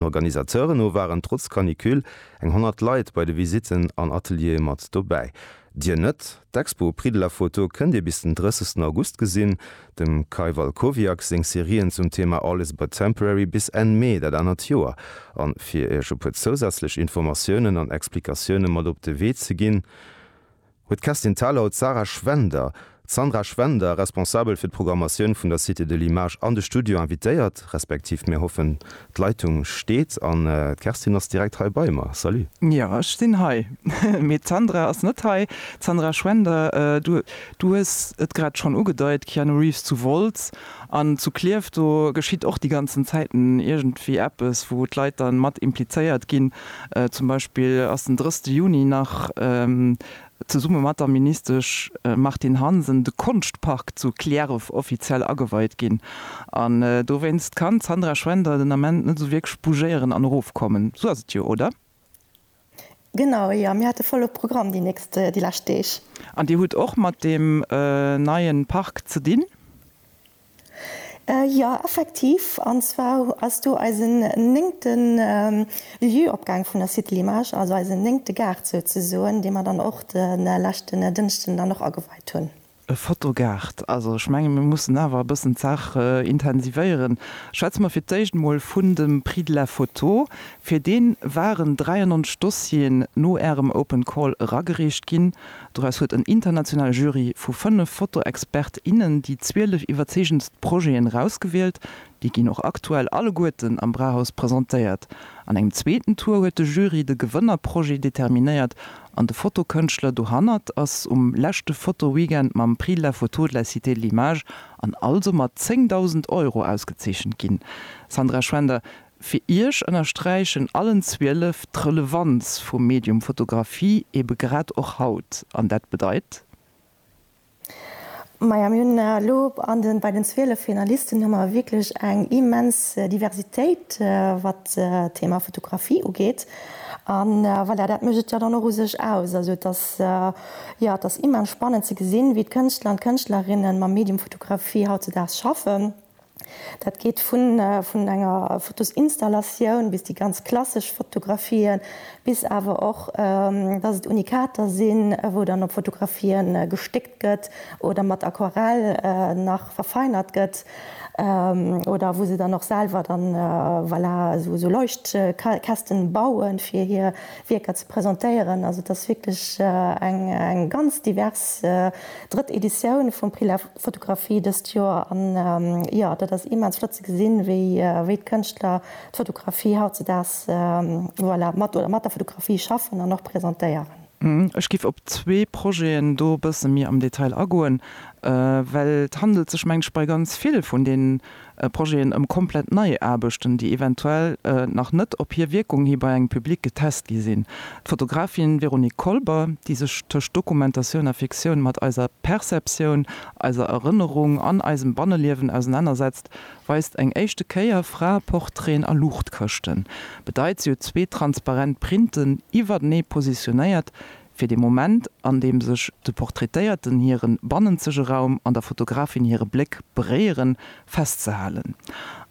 Den Organisateuren no waren trotz Canicule eng 100 Leit bei de Visitten an Ateliere mat dobäi. Dir net? D'Expo Prix de la photo kënnt Dir bis den 30 August gesinn. Dem Kai Walkowiak seng Serien zum Thema All is but temporary bis Enn Mee dat anert Joer. An fir Iech e puer zousätzlech Informatiounen an Explikatioune mat op de Wee ze ginn, huet d'Kerstin Thalau d'Sarah Schwender, Sandra Schwender, Responsabel fir d'Programmatioun vun der Cité de l'Image, an de Studio invitéiert, respektiv mir hoffen, d'Leitung steet an d'Kerstin ass direkt hei bei mer. Salut! Jo, ech sinn hei, mee d'Sandra ass net hei. D'Sandra Schwender, du hues et grad schonn ugedeit, Keanu Reeves zu Wolz, An zu Klierf, do geschitt och déi ganzen Zäiten iergendwéi eppes, wou d'Leit dann mat implizéiert ginn. Zum Beispill ass den 3. Juni nach zesumme mat der Ministesch Martine Hansen de Konschtpark zu Klierf offiziell ageweit ginn. An dowéinst kann d'Sandra Schwender den Ament net esou wierklech bougéieren an erofkommen. Sou ass et jo, oder? Genau, jo, mir hate volle Programm déi nächst, déi lescht Deeg. An Dir hutt och mat deem neie Park ze dinn? Jo, effektiv. An zwar ass do eisen néngte Lieu-opgaang vun der Cité Limage, also eisen néngte Gaart souzesoen, dee mer dann och de leschten Dënschden dann och ageweit hunn. E Fotogaart, also ech menge mir mussen awer e bëssen d'Saach intensivéieren. Schwätze mer fir d'éischt emol vun dem Prix de la photo. Fir dee waren 93 Dossieren no Ärem Open Call eragereecht ginn. Doraus huet en internationale Jury vu fënnef Fotoexpert, innen déi 12 iwwerzeegendst Projeten erausgewielt. Déi ginn och aktuell alleguerten am Brauhaus presentéiert. An engem zweeten Tour huet de Jury de Gewënnerprojet determinéiert An de Fotokënschtler dohannert ass um leschte Fotoweekend mam Prix de la photo de la Cité de l'image an also mat 10.000 Euro ausgezeechent ginn. Sandra Schwender, fir Iech ënnersträichen allen 12 d'Relevanz vum Medium Fotografie ebe grad och haut. An dat bedeit? Maja, mir hunn elo an den, bei den 12 Finalisten hu mer wierklech eng immens Diversitéit, wat d'Thema Fotografie ugeet. A voilà, dat mécht et jo dann och u sech aus. Also et ass, jo, et ass immens spannend ze gesinn, wéi d'Kënschtler an d'Kënschtlerinnen mam Medium Fotografie hautzedaags schaffen. Dat geet vun enger Fotosinstallation bis déi ganz klassesch Fotografien, bis awer och, dass et Unikater sinn, wou dann op Fotografien gestéckt gëtt oder mat Aquarell nach verfeinert gëtt oder wou se dann och selwer dann, voilà, esou Leuchtkästen bauen, fir hir Wierker ze presentéieren. Also et ass wierklech eng ganz divers drëtt Editioun vum Prix Fotografie dëst Joer an jo, dat ass immens flott ze gesinn, wéi d'Kënschtler d'Fotografie hautzedaags, voilà, mat oder mat der Fotografie schaffen an och presentéieren. Ech giff op zwee Projeten do bësse méi am Detail agoen, well et handelt sech mengt ech bei ganz vill vun deenen Projeten ëm komplett nei Aarbechten, déi eventuell nach net op hir Wierkung hi bei engem Public getest gi sinn. D'Fotografin Véronique Kolber, déi sech tëscht Dokumentatioun a Fiktioun mat eiser Perceptioun, eiser Erënnerung an eisem Banneliewen ausenannersetzt, weist eng éischte Kéier Fraeportraiten a Luuchtkëschten. Bedeit, si huet zwee transparent Printen iwwertenee positionéiert, Fir de Moment, an deem sech de Portraitéierten hiren bannenzege Raum an der Fotografin hire Bléck beréieren, festzehalen.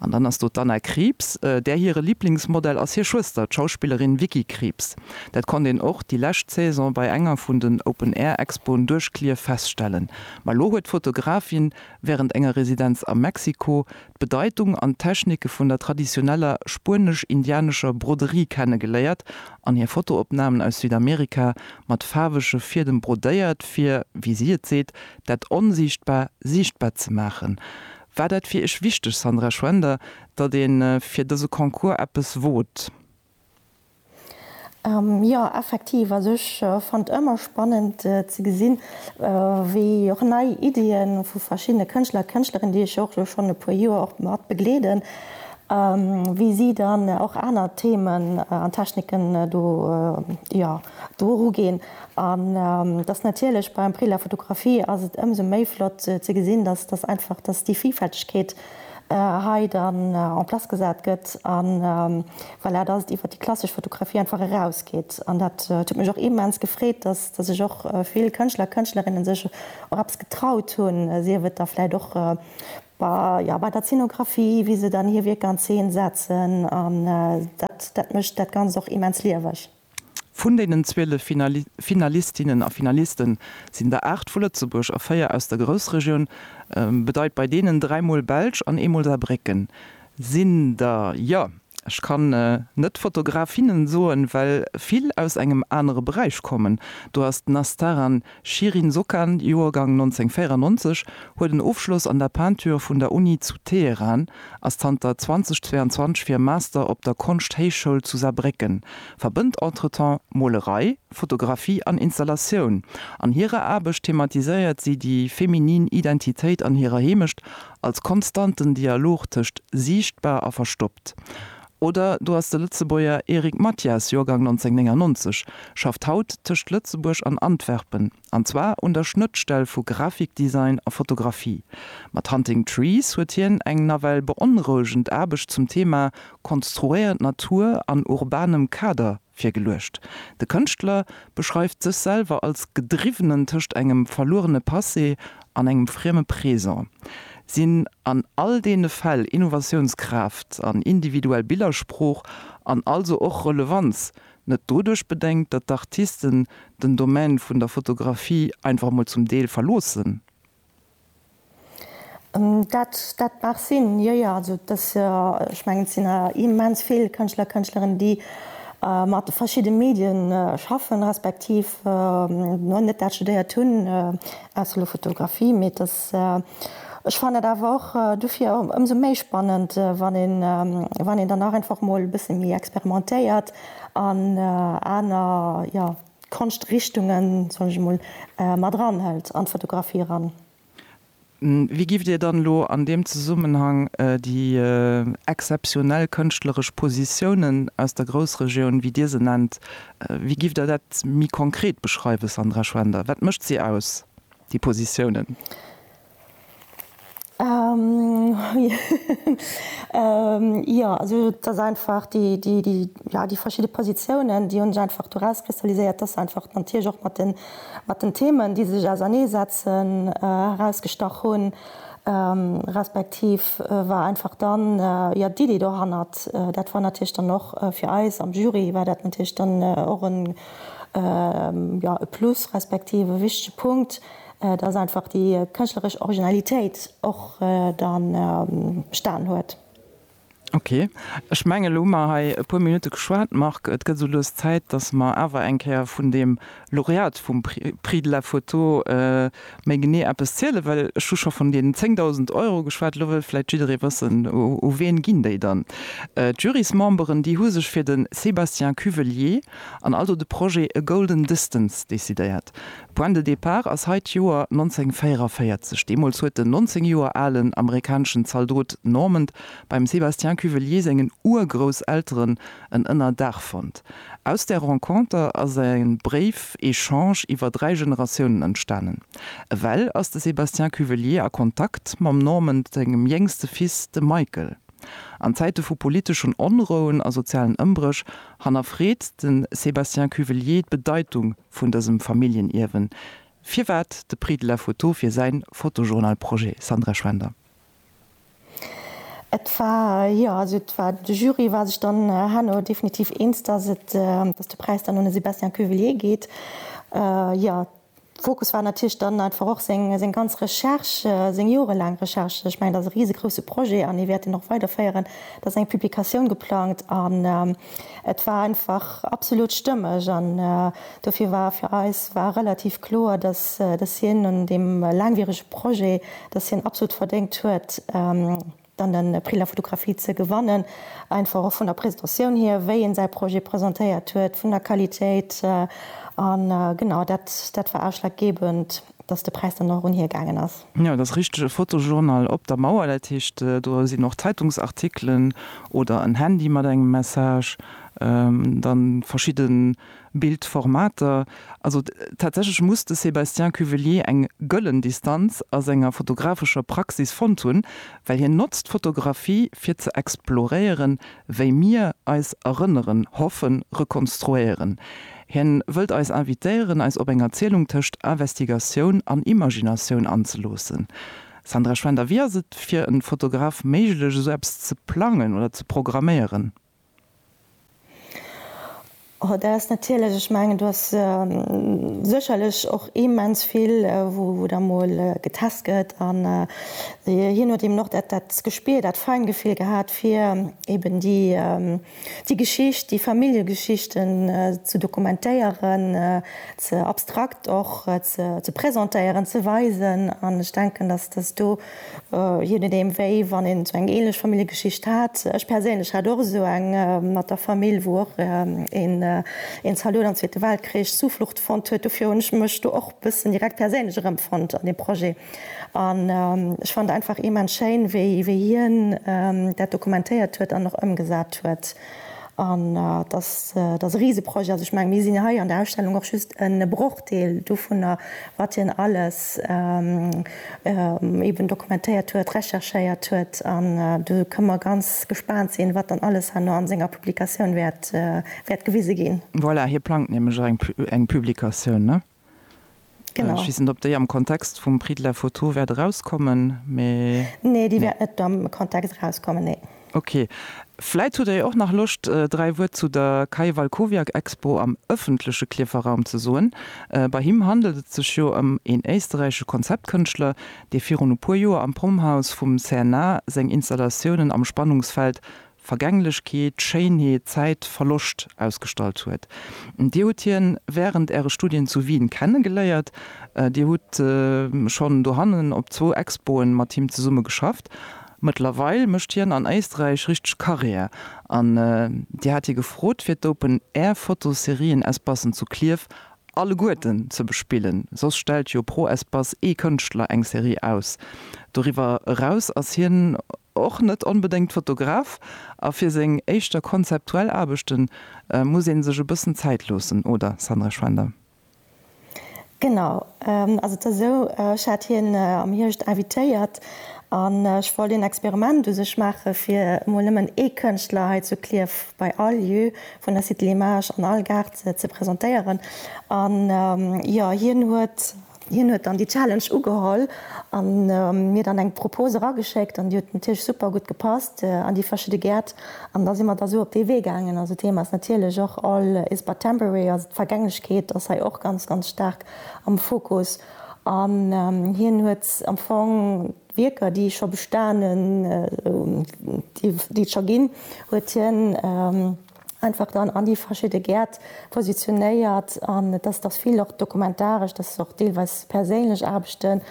An dann ass do d'Anna Krieps. Där hire Liblingsmodell ass hir Schwëster, d'Schauspillerin Vicky Krieps. Dat konnt een och déi lescht Saison bei enger vun den Open-Air-Expoen duerch Clierf feststellen. Ma elo huet d'Fotografin wärend enger Residenz a Mexiko d'Bedeitung an d'Technike vun der traditioneller spuenesch-indianescher Broderie kennegeléiert an hir Fotoopnamen aus Südamerika mat faarwege Fiedem brodéiert, fir, wéi si et seet, dat Onsiichtbar siichtbar ze maachen. War dat fir Iech wichteg, Sandra Schwender, datt ee fir dëse Concours eppes wot? Jo, effektiv. Also ech fannt ëmmer spannend ze gesinn, wéi och nei Iddien vu verschiddene Kënschtler a Kënschtlerinnen, déi ech jo och elo schonn e puer Joer och mat begleeden, wéi si dann och aner Themen an Techniken do, jo, do eruginn. An dass natierlech beim Prix de la Photographie ass et ëmsou méi flott ze gesinn, dass, dass einfach, dass déi Villfältegkeet hei dann en place gesat gëtt a voilà, dass et iwwert déi klassesch Fotografie einfach erausgeet. An dat huet mech och immens gefreet, dass sech och vill Kënschtler a Kënschtlerinnen sech och eppes getraut hunn, sief et da vläicht och bei, bei der Zeenografie, wéi se dann hir Wierker an Zeen setzen. An dat, dat mécht dat Ganzt och immens lieweg. Vun deenen 12 Finalistinnen a Finaliste sinn der 8 vu Lëtzebuerg a 4 aus der Groussregioun. Bedeit bei deenen dräimol Belsch an eemol Saarbrécken sinn der, jo, ech kann net Fotografinne soen, well vill aus engem anere Beräich kommen. Do ass d'Nastaran D'Shirin Sokan, Joergang 1994, huet en Ofschloss an der Peinture vun der Uni zu Teheran, ass zanter 2022 fir e Master op der Konschthéichschoul zu Saarbrécken, verbënnt entretemps Molerei, Fotografie an Installatioun. An hirer Aarbecht thematiséiert si déi feminin Identitéit an hirer Heemecht als konstanten Dialog tëscht siichtbar a verstoppt. Oder do ass de Lëtzebuerger Eric Mathias, Joergang 1999, schafft haut tëscht Lëtzebuerg an Antwerpen, an zwar un der Schnëttstell vu Grafikdesign a Fotografie. Mat Hunting Trees huet hien eng nawell beonrouegend Aarbecht zum Thema konstruéiert Natur an urbanem Kader Virgeluecht. De Kënschtler beschreift sech selwer als Gedriwwenen tëscht engem verluerene Passé an engem frieme Présent. Sinn an all deene Fäll Innovatiounskraaft an individuell Billersprooch, an also och Relevanz, net doduerch bedéngt, datt d'Artisten den Domaine vun der Fotografie einfach mol zum Deel verloossen? Dat dat mag sinn, jo jo. Also et ass jo, ech mengen et sinn awer immens vill Kënschtler a Kënschtlerinnen, déi mat verschidde Medien schaffen, respektiv elo net dat studéiert hunn, ausser elo Fotografie. Mee et ass, ech fannen et awer och dofir ëmsou méi spannend, wann een wann een dann nach einfach emol e bësse méi experimentéiert an aner, jo, D'Konschtrichtungen, soen ech emol, mat eranhëlt an d'Fotografie eran. Wéi giff Dir dann elo an deem Zesummenhang déi exzeptionell kënschtleresch Positiounen aus der Groussregioun, wéi Dir se nennt, wéi giff Der dat méi konkret beschreiwen, Sandra Schwender? Wat mécht si aus, déi Positiounen? Jo, also et ass einfach déi, déi, déi, jo, déi verschidde Positiounen, déi hunn ech einfach do erauskristalliséiert. Et ass einfach natierlech och mat den, mat den Themen, déi se sech auserneesetzen, erausgestach hunn. Respektiv war einfach dann, jo, d'Iddi dohannert, dat war natierlech dann och fir eis am Jury war dat natierlech dann och en, jo, e Plus respektiv e wichtege Punkt, Et ass einfach déi kënschtleresch Originalitéit och da bestanen huet. Ok. Ech mengen, elo hu mer hei e puer Minutte geschwat, Marc. Et gëtt esou lues Zäit, dass mer awer eng Kéier vun deem Laureat vum Prix de la photo méi genee eppes zielen. Well ech hu scho vun deenen 10.000 Euro geschwat. Elo wëll vläicht jidderee wëssen, U ween ginn déi dann? D'Jurysmemberen, déi hu sech fir de Sébastien Cuvelier an also de Projet A Golden Distance decidéiert. Point de départ ass hei d'Joer 1944. Deemools huet den 19 Joer alen amerikaneschen Zaldot Normand beim Sébastien Cuvelier sengen Urgrousselteren en Ënnerdaach fonnt. Aus där Renconter ass e Bréif-Echange iwwer dräi Generatiounen entstanen. Ewell ass de Sébastien Cuvelier a Kontakt mam Normand sengem jéngste Fils, de Michael. An Zäite vu politeschen Onrouen a sozialen Ëmbréch hannerfreet de Sébastien Cuvelier d'Bedeitung vun dësem Familljenierwen. Firwat de Prix de la photo fir säin Fotojournal-Projet, Sandra Schwender? Et war, jo, also et war, de Jury war sech dann herno definitiv eens, dass et, dass de Präis dann un de Sébastien Cuvillier geet. Jo, Fokus war natierlech dann einfach och seng, seng ganz Recherche, seng jorelaang Recherche. Ech mengen, dat ass e risegrousse Projet an hie wäert deen och weiderféieren. Et ass eng Publikatioun geplangt an. Et war einfach absolut stëmmeg an dofir war fir eis war relativ kloer, dass dass hien un deem laangwierege Projet, dass hien absolut verdéngt huet, dann de Prix de la photographie ze gewannen, einfach och vun der Presentatioun hier, wéi en säi Projet presentéiert huet, vun der Qualitéit. An genau dat dat war ausschlaggebend. dass de Präis dann och erun hir gaangen ass. Jo, et ass richteg, e Fotojournal op der Mauer, dat heescht, do sinn och Zeitungsartikelen oder en Handy mat engem Message, dann verschidde Bildformater. Also tatsächlech muss de Sébastien Cuvelier eng gëllen Distanz a senger fotografescher Praxis fonnt hunn, well hien notzt d'Fotografie fir ze exploréieren, wéi mir eis erënneren, hoffen, rekonstruéieren. Hien wëllt eis invitéieren, eis op eng Erzielung tëscht Investigatioun an Imaginatioun anzeloossen. Sandra Schwender, Wéi ass et fir en Fotograf méiglech, esou eppes ze plangen oder ze programméieren? Sandra Schwender, Dat ass natierlech, ech mengen, do ass sécherlech och immens vill, wou da mol getest gëtt. An hien huet eben och dat Gespir, dat Feingefill gehat, fir eben déi. Déi Geschicht, déi Familljegeschichten ze dokumentéieren, ze abstrakt och ze presentéieren, ze weisen. An ech denken, dass dass do, je nodeem wéi, wann een esou eng ähnlech Familljegeschicht hat, ech perséinlech hat och esou eng mat der Famill, wou och een een Zalot am Zweete Weltkrich Zuflucht fonnt huet, dofir hunn ech mech do och e bëssen direkt perséinlech erëmfonnt an deem Projet. An ech fand einfach immens schéin, wéi, wéi hien dat dokumentéiert huet an och ëmgesat huet. An et ass, et ass e Riseprojet. Also ech mengen, mir sinn hei an der Ausstellung och just e Brochdeel dovunner, wat hien alles eeben dokumentéiert huet, recherchéiert huet. An do kënne mer ganz gespaant sinn, wat dann alles herno a senger Publikatioun wäert, wäert gewise ginn. Voilà, hie plangt nämlech och eng Publikatioun, ne? Genau. Ech weess net, ob déi am Kontext vum Prix de la Photo wäert erauskommen, mee. Nee, déi wäert net am Kontext erauskommen, nee. Ok. Vläit hutt Der jo och nach Loscht, dräi Wuert zu der Kai Walkowiak-Expo am ëffentleche Klierfer Raum ze soen. Bei him handelt et sech jo ëm een éisterräichesche Konzeptkënschtler, dee virun e puer Joer am Prommhaus vum CNA seng Installatiounen am Spannungsfeld Vergänglechkeet, Schéinheet, Zäit, Verloscht ausgestallt huet. Dir hutt hien wärend äre Studien zu Wien kennegeléiert. Dir hutt schonn dohannen op zwou Expoen mat him zesumme geschafft. Mëttlerweil mécht hien an Éisträich richteg Karriär an Dir hat hie gefrot fir d'Open Air Fotoserien-Espacen zu Klierf alleguerten ze bespillen. Soss stellt jo pro Espace ee Kënschtler eng Serie aus. Doriwwer eraus ass hien och net onbedéngt Fotograf, a fir seng éischter konzeptuell Aarbechte muss ee sech e bëssen Zäit loossen, oder Sandra Schwender? Genau, also et ass esou, ech hat hien am Hierscht invitéiert an ech wollt een Experiment u sech maachen, fir emol nëmmen ee Kënschtler hei zu Klierf bei all Lieu vun der Cité Limages an all Gaart ze presentéieren. An jo, hien huet Hien huet dann déi Challenge ugeholl a mir dann eng Propose erageschéckt an déi huet natierlech super gutt gepasst an déi verschidde Gäert an da si mer da sou op dee Wee gaangen. Also d'Thema ass natierlech och all is but temporary, also d'Vergänglechkeet ass hei och ganz, ganz staark am Fokus an hien huet am Fong d'Wierker déi scho bestanen, déi et scho ginn, huet hien. einfach dann an déi verschidde Gäert positionéiert an et ass vill och dokumentaresch, dat ass och deelweis perséinlech Aarbechten.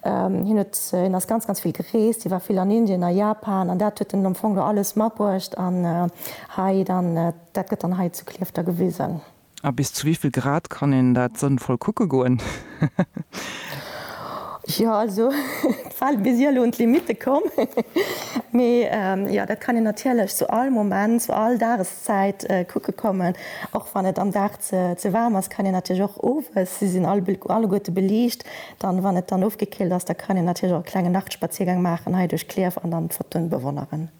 Hien huet, hien ass ganz ganz vill gereest, hie war vill an Indien, a Japan an dat huet en am Fong do alles matbruecht an hei dann, dat gëtt dann hei zu Clierf da gewisen. A bis zu wéivill Grad kann een dat sënnvoll kucke goen? Jo, also et war bis elo un d'Limitte komm, mee jo, dat kann een natierlech zu all Moment, zu all Dageszäit kucke kommen. Och wann et am Dag ze waarm ass, kann een natierlech och owes, si sinn alleguerte beliicht, dann, wann et dann ofgekillt ass, da kann een natierlech och e klenge Nachtspaziergang maachen hei duerch Klierf an dann d'Fotoen bewonneren.